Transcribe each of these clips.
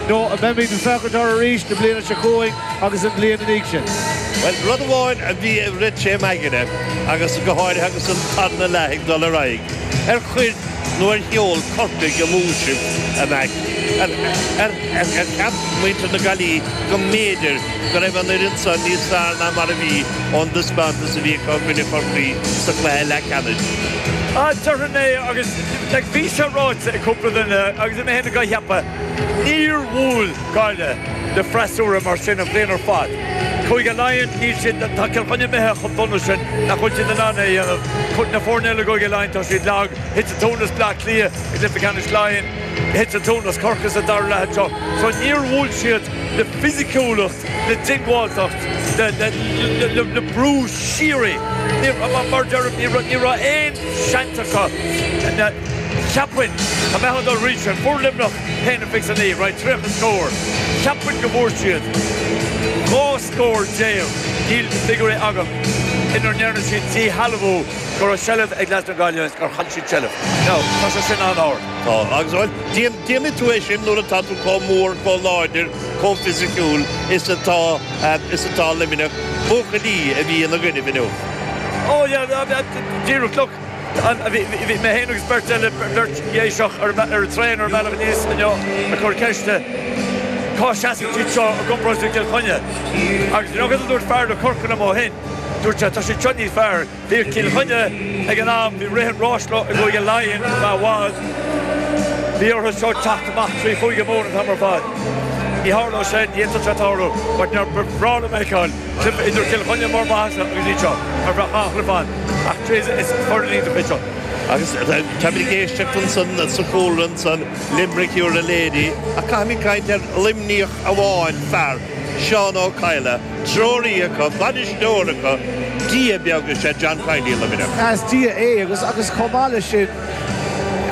Nó an mbeimid ag féachaint orthu arís an bhliain seo chugainn agus an bhliain ina dhiaidh sin? Bhuel, rud amháin a bhí ag rith tré m'aigne, agus go háirithe agus an tarna leath ag dul ar aghaidh, ar chuir nó ar sheol Corcaigh amú sibh? An ea gur cheap muintir na Gaillimhe go mb'fhéidir go raibh an fhoireann san níos fearr ná mar a bhí ón dtaispeántas a bhí acu i gcoinne Chorcaí sa chluiche leathcheannais? Déarfainn é, agus bhí sé ráite ag cúpla duine agus mé féin ag ceapadh. Níor bhuail Gaillimh le freasúra mar sin an bhliain ar fad. Cúige Laighean, níl siad, tá Cill Chainnigh imithe chomh dona sin nach bhfuil siad in ann é a dhéanamh. Na foirne eile i gCúige Laighean, tá siad lag. Thit an tóin as Bleá Cliath i gcluiche ceannais Laighean. Thit an tóin as Corcaigh sa dara leath anseo. So níor bhuail siad le fisiciúlacht, le diongbháilteacht, le brú síoraí. Mar a deirim, ní raibh aon seans acu. Cheapfainn, dá mbeadh an dul arís ar fuair Luimneach a haon a fiche naoi, right, 30 scór, cheapfainn go bhfuair siad 12 scór, níl na figiúirí agam, inar ndearna siad díshealbhú, go raibh seilbh ag leaids na Gaillimhe is gur chaill siad seilbh. Now, tá sé sin an-ard. Tá, agus bhuel, déanfaidh tú é sin nuair atá tú chomh mór, chomh láidir, chomh fisiciúil is atá, is atá Luimneach. Buachaillí a bhí ina gcoinnibh inniu. Oh yeah, díreach, look, Bhí mé fhéin agus beirt eile, beirt Dhéiseach, ar an traein ar an mbealach aníos inniu ag cur ceiste cá seasann siad seo i gcomparáid le Cill Chainnigh. Agus an rud a dúirt fear as Corcaigh liom ó shin, dúirt sé tá siad seo níos fearr. Bhí ar Cill Chainnigh ag an am, bhí rith an ráis leo i gCúige Laighean i bhfad, bhí orthu seo teacht amach trí Chúige Mumhan an t-am ar fad. Ní tharlódh sé, ní fhéadfadh sé tarlú, but nár bhreá leat a fheiceáil. Cluiche idir Cill Chainnigh i mbarr a maitheasa agus iad seo ar bhruach Áth Chliobháin ach cé is foirne do chuid seo? Agus táimid ag éisteacht ansan sa chúlra ansan, Limerick You're a Lady ach caithfimid caint ar Luimníoch amháin, fear, Seán Ó Cadhla, treoraí acu, bainisteoir acu, dia beag is ea John Kiely i Luimneach. Is dia é agus agus chomh maith leis sin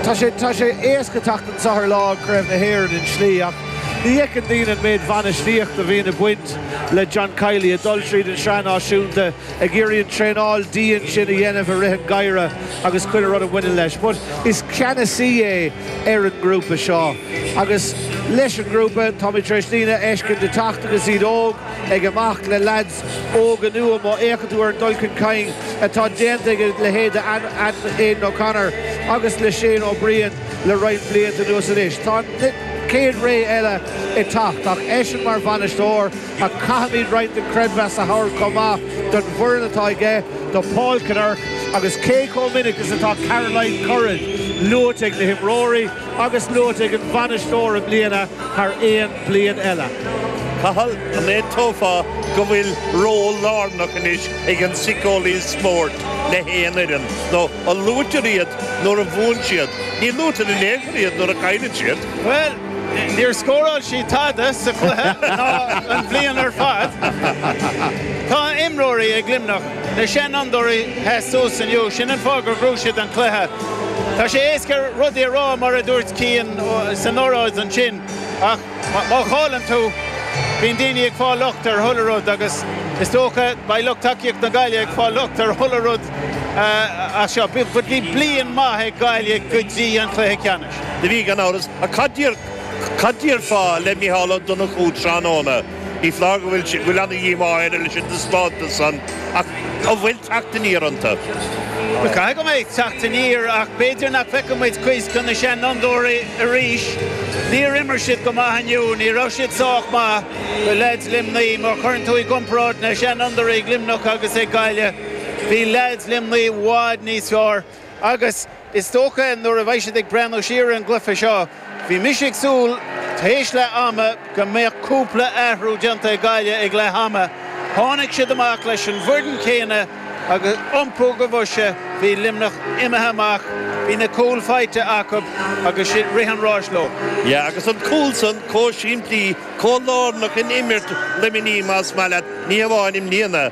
tá sé tá sé éasca teacht anseo ar lá Craobh na hÉireann i slí ach ní fheiceann daoine an méid bainistíocht a bhíonn ag baint le John Kiely ag dul tríd an tSraith Náisiúnta ag iarraidh an traenáil dian sin a dhéanamh i rith an geimhreadh agus chuile rud a bhaineann leis. But is ceannasaí é ar an ngrúpa seo agus leis an ngrúpa táimid tar éis daoine a fheiscint ag teacht agus iad óg, ag imeacht le leaids óga nua. Má fhéachann tú ar an dul chun cinn atá déanta ag a leithéid de Aidan O'Connor agus le Shane O'Brien, Le roinnt blianta anuas anois tá an céad ré eile ag teacht agus eisean mar bhainisteoir ach caithfimid roinnt den creidmheas a thabhairt chomh maith don bhfoireann atá aige, do Paul Kinnerk agus cé chomh minic is atá Caroline Currid luaite ag na himreoirí agus luaite ag an bhainisteoir i mbliana thar aon bhliain eile. Cathal, an aontófá go bhfuil ról lárnach anois ag an siceolaíocht spóirt le haon fhoireann nó Luaitear iad nuair a bhuann siad? Ní luaitear in aon chor iad nuair a chailleann siad. Bhuel, níor scóráil siad tada sa chluiche ná an bhliain ar fad. Tá imreoirí ag Luimneach, na seanfhondúirí a sheas inniu, sin an fáth gur ghnóthaigh siad an cluiche. Tá sé éasca rudaí a rá, mar a dúirt Cian san óráid ansin, ach, Má chailleann tú, bíonn daoine ag fáil locht ar chuile rud agus is dócha beidh lucht tacaíocht na Gaillimhe ag fáil locht ar chuile rud as seo ach bhí bliain maith ag Gaillimh go dtí an cluiche ceannais. Do bhí, gan amhras. Ach cad déarfá le Micheál Ó Donnchú tráthnóna? Ní foláir go bhfuil an-díomá air leis an taispeántas san ach an bhfuil teacht aniar iontu? Caithfidh go mbeidh teacht aniar ach b'fhéidir nach bhfeicfidh muid cuid de na seanfhondúirí arís. Níor imir siad go maith inniu, ní raibh siad sách maith do leaids Luimnigh. Má chuireann tú i gcomparáid na seanfhondúirí ag Luimneach agus ag Gaillimh, bhí leaids Luimnigh i bhfad níos fearr. Agus is dócha nuair a bheidh siad ag breathnú siar ar an gcluiche seo, bhí mise ag súil tar éis leath ama go mbeadh cúpla athrú déanta ag Gaillimh ag leath ama. Tháinig siad amach leis an bhfoireann céanna agus iompú do bhoise, bhí Luimneach imithe amach, bhí na cúil faighte acu agus sin rith an ráis leo. Yeah agus an cúl san comh simplí, comh lárnach in imirt Luimnigh más maith leat, ní hamháin i mbliana,